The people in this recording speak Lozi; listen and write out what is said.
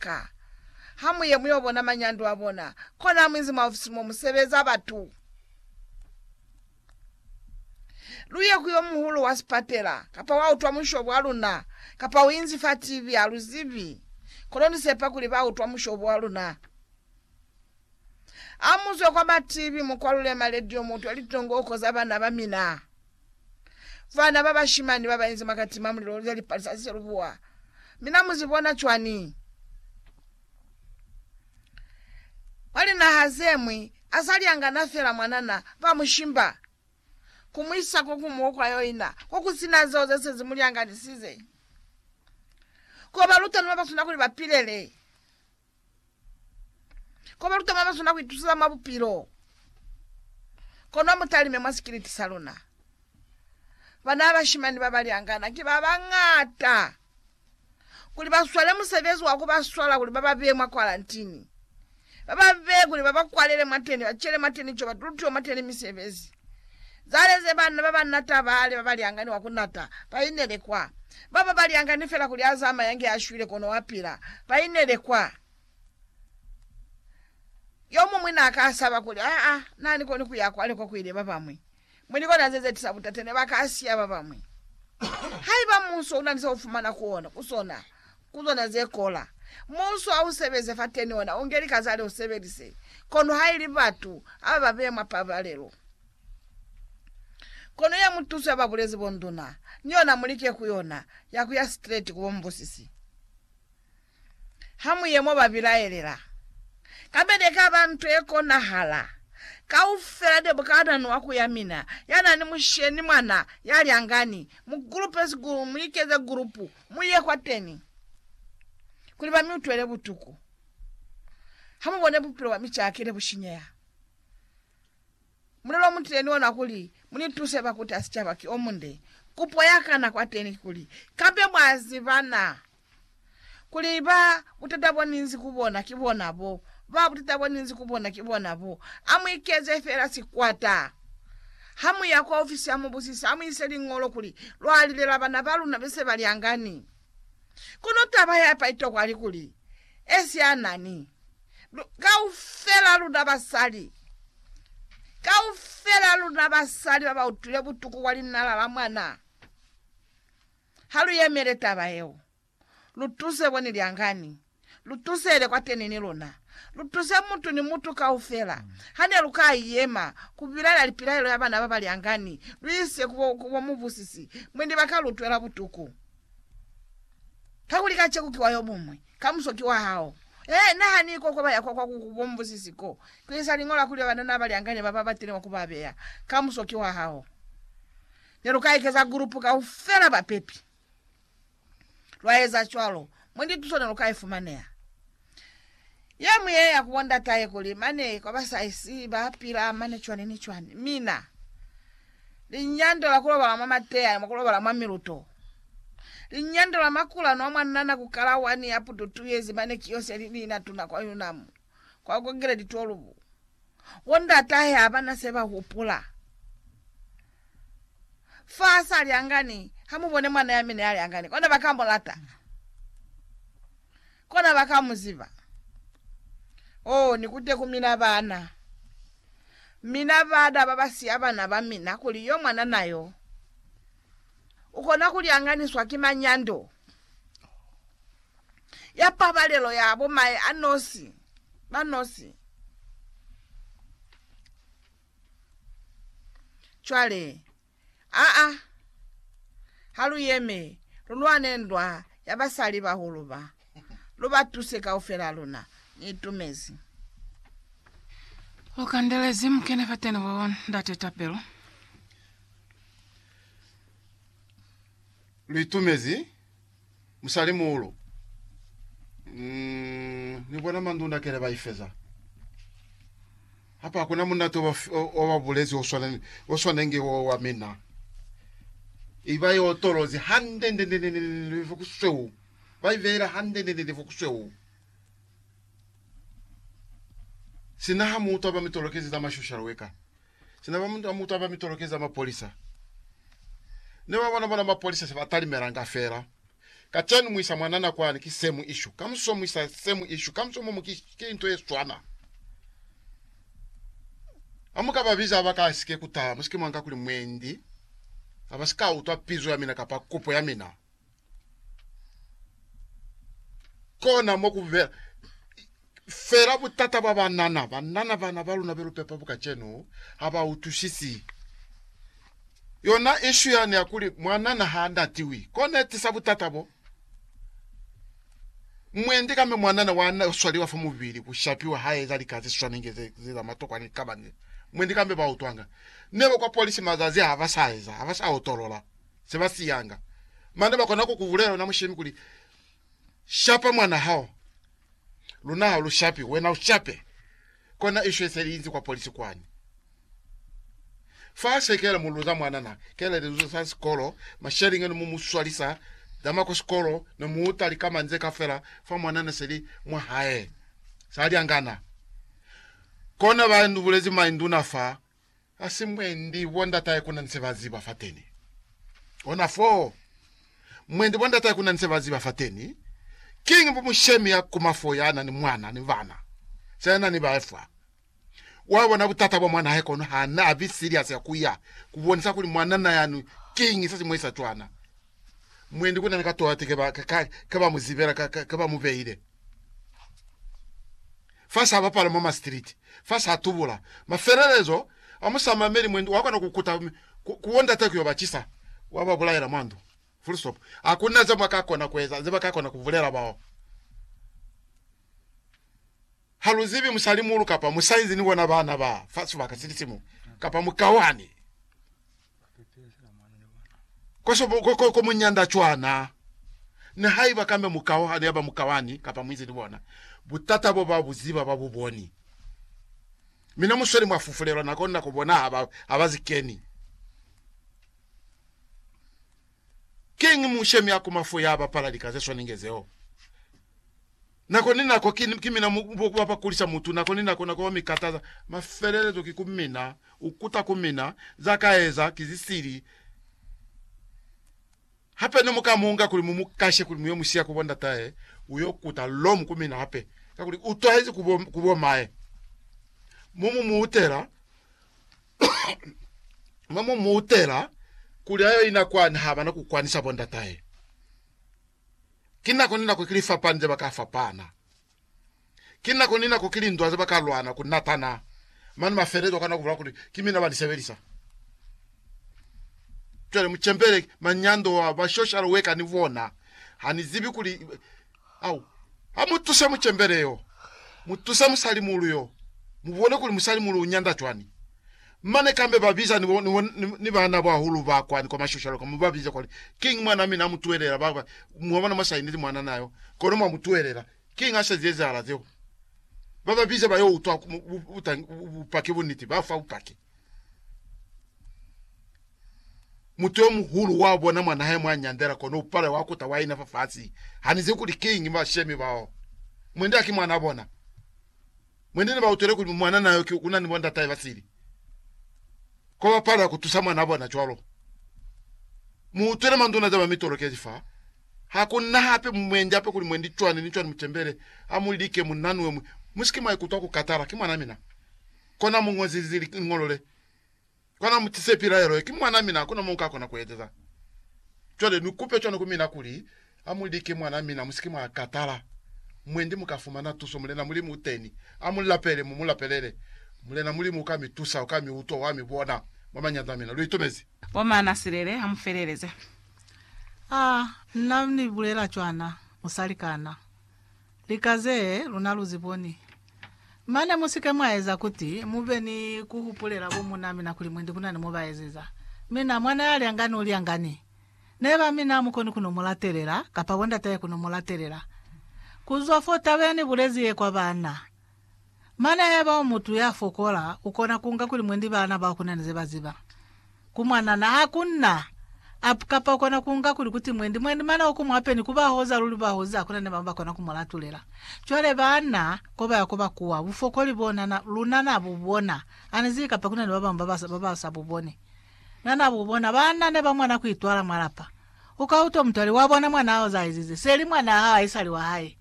ka. Ha mu ye mu yo bona manyando a bona, kona ha mu inzi mwa ofisi mo mu sebeza batu. Lu ye ku yo muhulu wa sipatela, kapa wa utwa musho bwa luna, kapa u inzi fa TV, ha lu zibi. Kono ni sepa kuli ba utwa musho bwa luna. Ha mu zwe kwa ba TV, mu kwalule maledio, mu utwe litongooko za bana ba mina. Bana ba bashimani ba ba inzi mwa kati mwa mulilo ze li palisa ze lubuwa. Mi na mu zi bona cwani? Mwa linaha ze ñwi, a sa lyangana fela mwanana, ba mu shimba, ku mu isa ko kuñwi ko kwa yo ina, ko ku si na zeo ze se zi mu lyanganisize, ko ba luta ni ba ba sina kuli ba pilele. Ko baluta mwa maswina kuitusisa mwa bupilo, kono mutalime mwa sikiliti sa luna. Bana bashimani babaliangana ki babañata kuli baswale musebezi wa kubaswala kuli bababee mwa kwarantini, bababee kuli babakwalele mwateni, bacele mwateni co, batulutiwe mwateni misebezi. zaleze banna ba banna tabale ba baliangani wa ku nata, ba inele kwa. Baba baliangani fela kuli Azama yange ashwile kono wa pila, ba inele kwa. Yomumwi na ka saba kuli, Aa, na ni koni ku ya kwale kwa ku ile babamwi. Mwi ni kona ze ze tisa butate, ne ba ka siya babamwi. Haiba munso una ni sa u fumana ku ona, ku sona, Ku zona ze kola. Muuso ha u sebeze fateni ona u nge lika zale u sebelise, kono ha ili batu aba ba beya mwa pabalelo. Kono ya mutuso ya ba bulezi bonduna, ni yona mu like ku yona, ya ku ya streti ku bo mubusisi. Ha mu ye mo ba bilaelela. Kabede e ka ba nto ye konahala. Kaufela de bukanani wa ku ya mina, ya na ni musheni, mwana, ya lyangani, mu gulupesi, mu likeze gulupu, Mu ye kwateñi kuli ba mi utwele butuku, ha mu bone bupilo bwa mi caki ne bu shinyeha. Mulelo mu tile ni ona kuli mu ni tuse ba kuta sicaba ki o munde. Kupo ya kana kwateñi kikuli, Kape mwa ziba na kuli ba butata bo ni nzi ku bona ki bona bo? Ba butata bo ni nzi ku bona ki bona bo. A mu ikeze fela sikwata. Ha mu ya kwa ofisi ya mubusisi, ha mu ise liñolo kuli lwa lilela bana ba luna be se ba lyangani. Kono taba ya pa itokwa li kuli, esianani. Lu, kaufela luna basali, kaufela luna basali ba ba utwile butuku kwa linala la mwana, ha lu yemele taba yeo. Lu tuse bo ni lyangani. Lu tusele kwateni ni luna. Lu tuse mutu ni mutu kaufela. Ha ne lu ka yema ku bilaela lipilaelo ya bana ba ba lyangani, lu ise ku bo, ku bo mubusisi, mwendi ba ka lu twela butuku. Kakuli kaceku ki wa yo muñwi, kamuso ki wa hao. Ee, nahani ko kwa ba ya kwa, kwa ku, ku bo mubusisi ko, ku isa liñola kuli banana ba lyangani ba ba batile mwa ku ba beya. Kamuso ki wa hao. Ne lu ka ikeza gulupu kaufela bapepi. lwa eza cwalo, mwendi tuso ne lu ka i fumaneha. Ye mu ye ya ku bo ndatahe kuli mane kwa ba sa isi ba pila mane cwani ni cwani. Mina, linyando la ku lobala mwa mateya ni mwa ku lobala mwa miluto, linyando la makula no mwa nana ku kala wani ya pututuyezi mane kiyo se li ni na tuna kwa Yunam, kwa Kongeredi 12. Bo ndatahe habana se ba hupula. Fa sa li angani, ha mu bone mwana ya mina ya li angani. Kona ba ka mu lata. Kona ba ka mu ziba. Oh, ni kute ku mina bana. Mina bada ba ba siya bana ba mina kuli yo mwanana yo ukona ku li anganiswa ki manyando. ya pabalelo ya bo mae a nosi ba nosi. Cwale, a, a, ha lu yeme, lu lwane ndwa ya basali bahulu ba. Lu ba tuse kaufela luna. Ni itumezi. Lu kandelezi mukene fateni bo Ndate tapelo. Lu itumezi musalimuulu mm, ni bona mandunda kele ba ifeza hapa hakuna munate wa ba bulezi o swaneng o swanenge o wa mina iba yo tolozi hande nde nde nde nde ku sweu ba ivela hande nde nde ku sweu sina ha mutu aba mitolokezi za mashushalo weka Sina ba mutwa mutwa ba mitoloke za mapolisa ne ba bona bona mapolisa se ba talimelanga fela. Kacenu muisa mwanana kwani ki same issue. Kamuso muisa same issue. Kamuso momo ki, ki into ye swana. Amuka ba biza ba ka sike kutala musike mwanga kuli mwendi abasika utwa pizo ya mina kapa kopo ya mina. Kona mo ku bela fela butata bwa banana. Banana bana ba luna belu pepa bu kacenu ha ba utusisi yona ishu yani ya kuli mwanana ha natiwi. Kona etisa butata bo. Mwendi kame mwanana wa na swaliwa fa mubili ku shapiwa ha eza lika ze swanenge ze za matokwa ni kabani. Mwendi kame ba utwanga. Neba kwa polisi mazazi ha ba sa eza, ha ba sa otolola. se ba siyanga. Mane ba kona ku ku bulela wena mushemi kuli, Shapa mwana hao. Luna ha lu shapi, wena u shape. Kona isho ise liinzi kwa polisi kwani. Fa se kela mu luza mwana na, kela liluzo sa sikolo, masheliñi ne mu mu swalisa, zama kwa sikolo, ne mu uta likamani ze kafela fa mwana ne se li mwa hae. Sa lyangana. Kona ba nu bulezi mainduna fa, Ha si mwendi bo ndatahe kuna ni se ba ziba fateni. Ona fo. Mwendi bo ndatahe kuna ni se ba ziba fateni. Kiñi bo mushemi ya kuma fo ya na ni mwana ni bana, se na ni bae fa? Wa bona butata bwa mwanahe kono ha na bi serious ya kuya ku bonisa kuli mwanana yani kiñi se si mu esa cwana. Mwendi kuna ni ka tola ti ke ba, ke, ke ba mu zibela, ke, ke ba mu beile. fa sa bapala mwa masitiliti, fa sa tubula. Mafelelezo a musamameli mwendi wa kona ku kuta ku, ku wondata ku yo ba cisa, wa ba bulaela mwa ndu. Full stop. Ha ku na ze mwa ka kona ku eza, ze ba ka kona ku bulela bao. Ha lu zibi musalimuulu kapa musainzi ni bona bana ba fa sibaka sili simu, kapa mukauhani. Ko muñanda cwana, nihaiba kambe mukao hane yaba mukawani kapa muizi ni bona, butata bo ba bu ziba ba bu boni. Mi ne mu sweli mwa fufulelwa nako ni nako bona ha ba zikeni. Kiñi mushemi ya ku mafu ya bapala lika ze swanenge zeo? Nako ni nako ki, ki mina mu, bo ba ba kulisa mutu, nako ni nako, nako ba mi kataza. Mafelelezo ki ku mina, u kuta ku mina, za ka eza ki zi sili. Hape ne mu ka mu nga kuli mu mu kashe kuli mu yo mu siya ku bo ndatahe, u yo kuta lomu ku mina hape, kakuli u twahezi ku bo, ku bo mae. Mu mu muutela. mwa mu mu utela kuli ayo ina kwani haba na ku kwanisa bo ndatahe. Ki nako ni nako ki lifapani ze ba ka fapana. Ki nako ni nako ki lindwa ze ba ka lwana ku natana. Mane mafelelezo u kana ku bula kuli, Ki mina ba ni sebelisa. Cwale mu cembele manyando a ba shoshalo weka ni bona. Ha ni zibi kuli Au, ha mu tuse mucembele yo, mu tuse musalimuulu yo, mu bone kuli musalimuulu u nyanda cwani. Mane kambe ba biza ni, ni, ni, ni baana bahulu ba kwani kwa mashoshalo ka, mu ba bize kwani, Kiñi mwan'a mina a mu tuhelela? Ba, ba, mwa bona, mwa sa ineli mwanana yo, kono mwa mu tuhelela. Kiñi ha se zezahala zeo? Ba ba bize ba yo utwa bu, bu, bu, bupaki, bunniti, ba fa bupaki. Mutu yo muhulu wa bona mwa nahe mwa nyandela kono u pale wa kuta wa ina fa fasi. Ha ni zibi kuli kiñi bashemi bao. Mwende haki mwanaa bona. Mwende ne ba utwele kuli mwanana yo ki una ni bo ndatahe ba sili. Ko ba palela ku tusa mwanaa bona cwalo. Mu utwele manduna za ba mitolokezi fa. Ha ku na hape mwende hape kuli mwendi cwani ni cwani mu tembele. Ha mu like munna ni we mwi. Mu si ke mwa ikutwa ku katala. Ki mwanaa mina. Kona mu ñozi li ngolole. Kona mu tise pilaelo ye. Ki mwana mina, hakuna mo nka kona ku ezeza. Cwale ni kupe cwani ku mina kuli, Amu like mwana mina, musike mwa katala. Mwendi mu ka fumana tuso. Mulena Mulimu u teni. Amu lapele, mu mu lapelele. Mulena Mulimu uka mi tusa, uka mi utwa, wa mi bona. Mwa mañanza a mina. Lu itumezi? Bo Manasilele, ha mu feleleze. Ah, nna ni bulela cwana, musalikana. Lika ze luna lu zi boni. Mane mu si ke mwa eza kuti mu be ni ku hupulela bo muuna mina kuli mwendi ku na ni mo ba ezeza. Mina, mwana ya lyangani u lyangani. Neba mina ha mu koni ku no mu latelela, kapa bondatahe ku no mu latelela. Ku zwa fo taba ya ni bulezi ye kwa baana, Mana yaba umutu ya fokola ukona kunga kuli mwendi bana bao kunani ze baziba. Ku mwanana ha ku na up kapa ukona kunga kuli kuti mwendi mwendi mana oku mwape ni kuba hoza luli ba hozi hakuna ne bamwe bakona ku mu latulela. Cwale bana koba ya koba kuwa bufokoli bo nana luna na bu bona. Ani zibi kapa kunani ba bamwe ba ba sa bu boni. Na na bu bona. Bana ne ba mwana ku itwala mwa lapa. Uka utwa mutwali wa bona mwana haoza aizize seli mwana hao aisali wa hae.